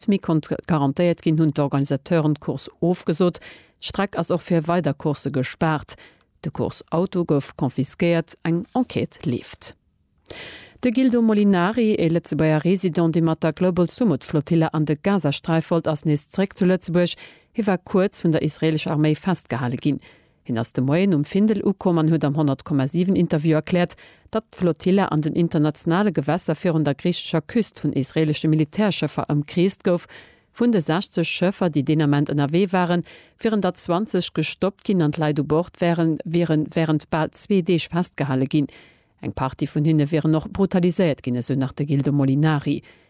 D'Mi konnt garantéiert ginn, hunn d'Organisateuren d'Course ofgesot. D'Streck ass och fir weider Coursse gespaart. De Course-Auto gouf confisquéiert. Eng Enquête leeft. De Gildo Molinari, ee Lëtzebuerger Resident, dee mat der Global Sumud Flotilla an de Gazasträif wollt, ass nees zeréck zu Lëtzebuerg. Hie war kuerz vun der israeelescher Arméi festgehale ginn. Hien ass de Moien um Findel ukomm an huet am 100,7 Interview erkläert, datt d'Flotilla an den internationale Gewässer virun der griichescher Küst vun israelesche Militärschëffer ëmkreest gouf. Vun de 60 Schëffer, déi deen Ament ënnerwee waren, wieren der 20 gestoppt ginn an d'Leit u Bord wäre wiere wärend bal zwee Deeg festgehale ginn. Eng Partie vun hinne wieren och brutaliséiert ginn, esou nach de Gildo Molinari.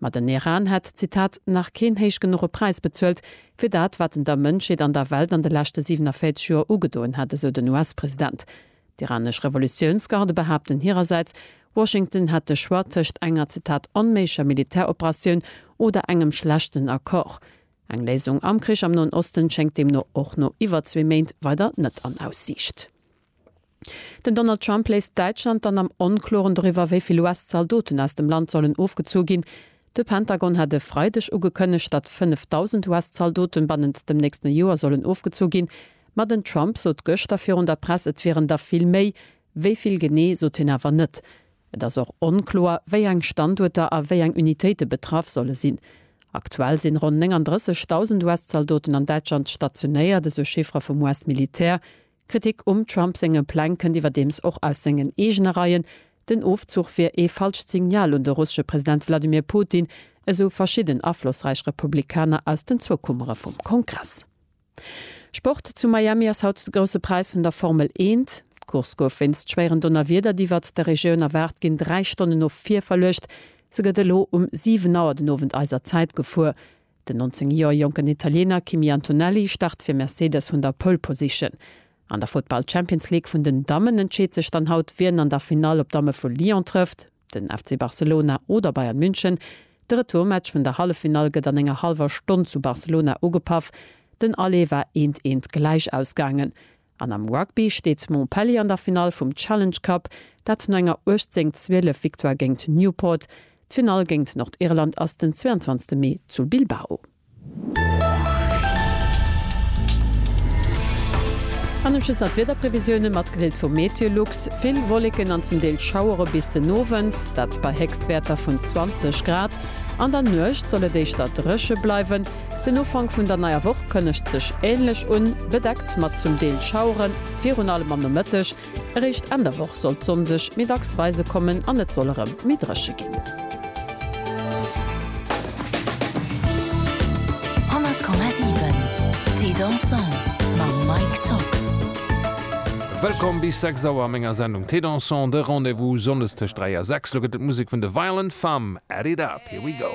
Ma den Eran hätt, Zitat, nach keen héich genuche Präis bezuelt, fir dat, wat en der Mënschheet an der Welt an de leschte 47 Joer ugedoen hätt, esou den US-President. D'iranesch Revolutiounsgarde behaapten hirersäits, Washington hätt de Choix tëscht enger, Zitat, onméiglecher Militäroperatioun oder engem schlechten Accord. Eng Léisung am Krich am Noen Osten schéngt deemno och no iwwer zwee Méint weider net an Aussiicht. Den Donald Trump léisst Däitschland dann am Onkloren doriwwer, wéi vill US-Zaldoten aus dem Land sollen ofgezu ginn. De Pentagon hat e Freideg ugekënnegt, datt 5.000 US-Zaldoten bannent dem nächste Joer sollen ofgezu ginn. Ma den Trump sot gëschter virun der Press, et wieren der vill méi. Wéi vill genee, sot hien awer net. Et ass och onkloer, wéi eng Standuerter a wéi eng Unitéite betraff solle sinn. Aktuell sinn ronn 39.000 US-Zaldoten an Däitschland stationéiert, esou Chiffere vum US-Militär. Kritik um Trump senge Pläng kënnt iwwerdeems och aus sengen eegene Reien. Den Ofzuch wier ee falscht Signal un de russesche President Wladimir Putin, esou verschidden aflossräich Republikaner aus den zwou Kummere vum Kongress. Sport, Zu Miami ass haut de grousse Präis vun der Formel Eent. D'Course gouf wéinst schwéieren Donnerwieder, déi iwwert der Regioun erwaart ginn, dräi Stonnen no vir verluecht. Se gëtt elo um 7 Auer den Owend eiser Zäit gefuer. Den 19 Joer jonken Italiener Kimi Antonelli start fir Mercedes vun der Pole Position. An der Futtball Champions League vun den Dammen entscheet sech dann haut wien an der Finall op d'Damme vu Lyon trëfft, den FC Barcelona oder Bayern München. De Retourmatch vun der Halleffinall gëtt an enger hallwer Stonn zu Barcelona ugepaff. Den Aller war eent eent gläich ausgaangen. An am Rugby steet Montpellier an der Finall vum Challenge Cup, dat no enger 18, 12 Victoire géint Newport. D'Finall géint Nordirland ass den 22 Mee zu Bilbao. An um Schluss nach d'Wiederprevisioune matgedeelt vum MeteoLux, Vill Wolleken an zum Deel Schauere bis den Owend, dat bei Héchstwäerter vun 20 Grad. An der Nuecht soll et éischter dréche bleiwen. Den Ufank vun der neier Woch kënnegt sech änlech un, bedeckt mat zum Deel Schauere virun allem am Nomëtteg. Eréischt Enn der Woch soll d'Sonn sech méi dacks weise kommen an et soll erëm méi dréche ginn. Wëllkomm bis 6 Auer a menger Sendung Thé Dansant, de Rendez-vous Sonndes tëscht 3 a 6. Lo gëtt et Musek vun de Violent Femmes, Add It Up, Here We Go.